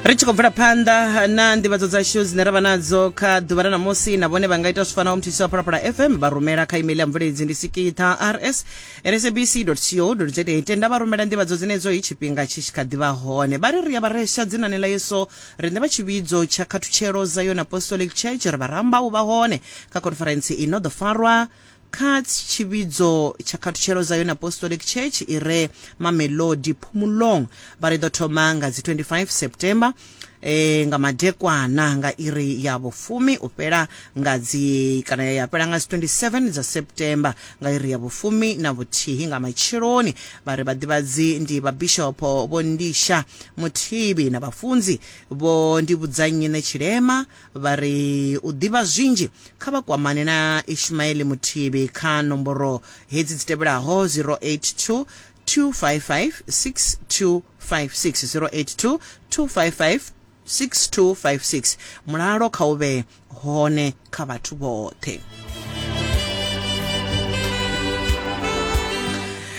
ri tshi khou bvela phanḓa na nḓivhadzo dzashu dzine ra vha nadzo kha ḓuvha ra namusi na vhone vha nga ita zwi fanaho muthusi wa phalaphala fm vha rumela kha email ya mveleledzi ndi sikitha rs rsabc co za tenda vha rumela nḓivhadzo dzenedzo i tshifhinga tshi tshi kha ḓivha hone vha ri ri a vha resha dzinani ḽa yeso riṋe vha tshivhidzo tsha khathutshelo dza yone apostolic church ri vha ramba u vha hone kha conference i no ḓo farwa kha tshivhidzo tsha khathutshelo Zion Apostolic Church i re Mamelodi Phumulong vha ri ḓo thoma nga dzi 25 September e, nga madekwana nga iri ya vhufumi u fhela nga dzi kana ya fhela nga dzi 27 dza September nga iri ya vhufumi na vhuthihi nga matsheloni vha ri vhaḓivhadzi ndi vhabishopo vho Ndisha Muthibi na vhafunzi vho Ndivhudzannyi Ṋetshilema vha ri u ḓivha zwinzhi kha vha kwamane na Ishmael Muthivhi kha nomboro hedzi dzi tevhelaho 082 255 6256 082 255 6256 mulalo kha u vhe hone kha vhathu vhoṱhe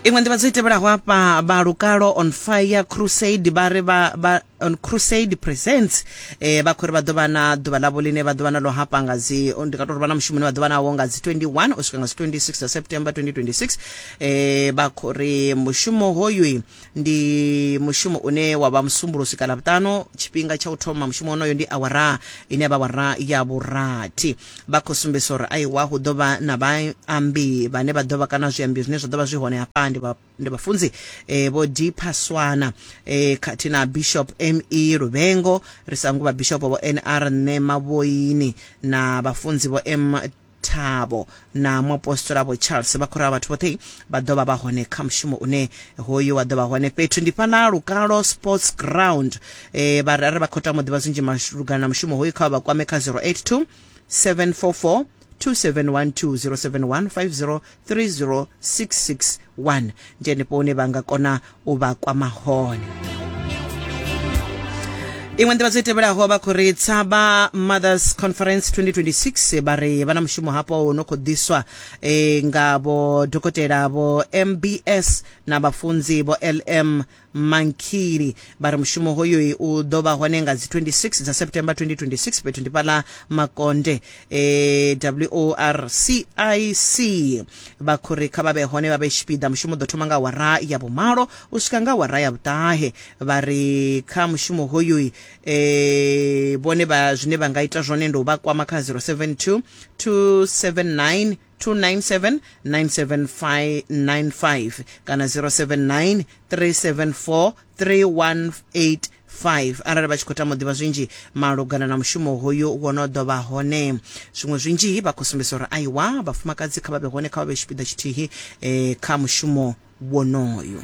iṅwe nḓivhadzo i tevhelaho afha vha lukalo on fire crusade vha ri vha on crusade presents eh, vha khou ri vha ḓo vha na ḓuvha ḽavho ḽine vha ḓo vha nalo hafha nga dzi ndi nga tou ri vha na mushumo une vha ḓo vha nawo nga dzi 21 u swika nga dzi 26 dza september 2026 eh, vha khou ri mushumo hoyu ndi mushumo une wa vha musumbulusi kana vhuṱano tshifhinga tsha u thoma mushumo wonoyo ndi awara ine vha wara ya vhurathi vha khou sumbedzisa uri aiwa hu ḓo vha na vhaambi vhane vha ḓo vha kana zwiambi zwine zwa ḓo vha zwi hone hafha ndi vha ndi vhafunzi eh, vho deeper swana eh, khathihi na bishop me luvhengo ri sa nguvha bishop vho nr nṋe mavhoini na vhafunzi vho m thabo na muapostola vho charles vha khou rala vhathu vhoṱhe vha ḓo vha vha hone kha mushumo une hoyu wa ḓo vha hone fhethu ndi fhana lukalo sports ground eh, vharari vha khou tama u ḓivha zwinzhi malugana na mushumo hoyu kha vha vha kwame kha 082 744 2712 0715030661 ndi henefho hune vha nga kona u vha kwama hone iṅwe nḓivha dzo tevhelaho vha khou ri tsaba mothers conference 2026 vha ri vha na mushumo hapo wo no khou ḓiswa eh, nga vho dokotela vho mbs na vhafunzi vho lm mankili vha ri mushumo hoyoyi u ḓo vha hone nga dzi 26 dza september 2026 fhethu ndi fhaḽa makonde e, worcic vha khou ri kha vha vhe hone vha vhe tshipiḓa mushumo u ḓo thoma nga awara ya vhumalo u swika nga awara ya vhuṱahe vha ri kha mushumo hoyoyi e, vhone vha zwine vha nga ita zwone ndi u vha kwama kha 072 279 297 97595 kana 079 374 3185 arali vha tshi khou tama u ḓivha zwinzhi malugana na mushumo hoyu wo no ḓo vha hone zwiṅwe zwinzhi vha khou sumbedza uri aiwa vhafumakadzi kha vha vhe hone kha vha vhe tshipiḓa tshithihi eh, kha mushumo wonoyo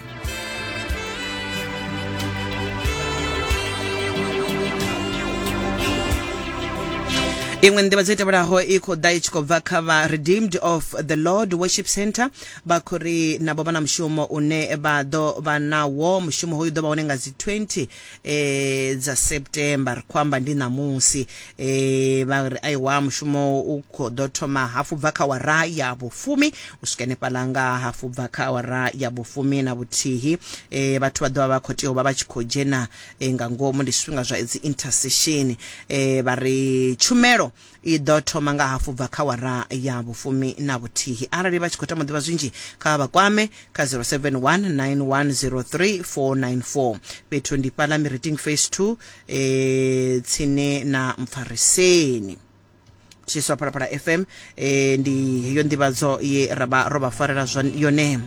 iṅwe nḓivha dzo tevhelaho i khou ḓa i tshi khou bva kha vha redeemed of the lord worship center vha khou ri navho vha na mushumo une vha ḓo vha nawo mushumo hoyu ḓo vha hone nga dzi 20 eh, dza september ri khou amba ndi ṋamusi eh, vha ri aiwa mushumo u khou ḓo thoma hafu bva kha wara ya vhufumi u swika henefhaḽa nga hafu bva kha wara ya vhufumi na vhuthihi eh, vhathu vha ḓo vha vha khou tea u vha vha tshi khou dzhena eh, nga ngomu ndi zwifhinga zwa dzi intercession eh, vha ri tshumelo i ḓo thoma nga hafu bva kha wara ya vhufumi na vhuthihi arali vha tshi khou tama ḓivha zwinzhi kha vha kwame kha 0719103494 fhethu ndi fhala miriting face 2 e eh, tsini na mpfariseni tshiswa phalaphala fm e, ndi heyo nḓivhadzo ye ra vha ro vha farela yone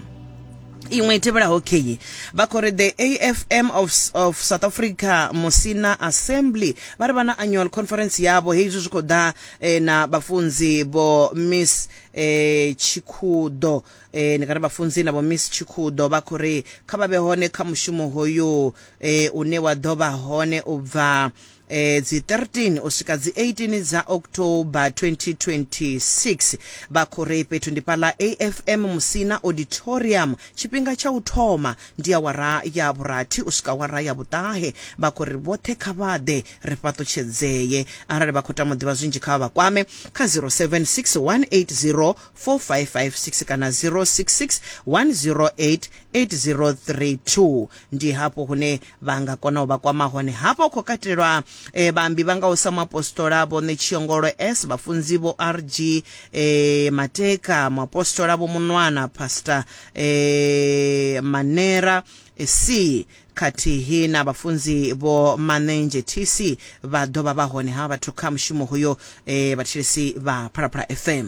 iṅwe i tevhelaho kheyi vha khou ri the afm of, of south africa musina assembly vha ri vha na annual conference yavho hei izwi zwi khou ḓa eh, na vhafunzi vho miss eh, tshikhuḓo eh, ndi nga ri vhafunzi na vho miss tshikhuḓo vha khou ri kha vha vhe hone kha mushumo hoyu eh, une wa ḓo vha hone u bva eh, dzi 13 u swika dzi 18 dza october 2026 vha khou ri fhethu ndi fhaḽa afm musina auditorium tshifhinga tsha u thoma ndi awara ya vhurathi u swika awara ya vhuṱahe vha khou ri vhoṱhe kha vha ḓe ri fhaṱutshedzee arali vha khou tama u ḓivha zwinzhi kha vha kwame kha 0761804556 kana 066 108 8032 ndi hafho hune vha nga kona u vha kwama hone hafha u khou katelwa e, vhaambi vha ngaho sa muapostola vho ṋetshiyongolo s vhafunzi vho rg e, mateka muapostola vho munwana pastor e, manera e, c khathihi na vhafunzi vho manenzhe tc vha ḓo vha vha hone ha vhathu kha mushumo hoyo e, vhathetshelesi vha phalaphala fm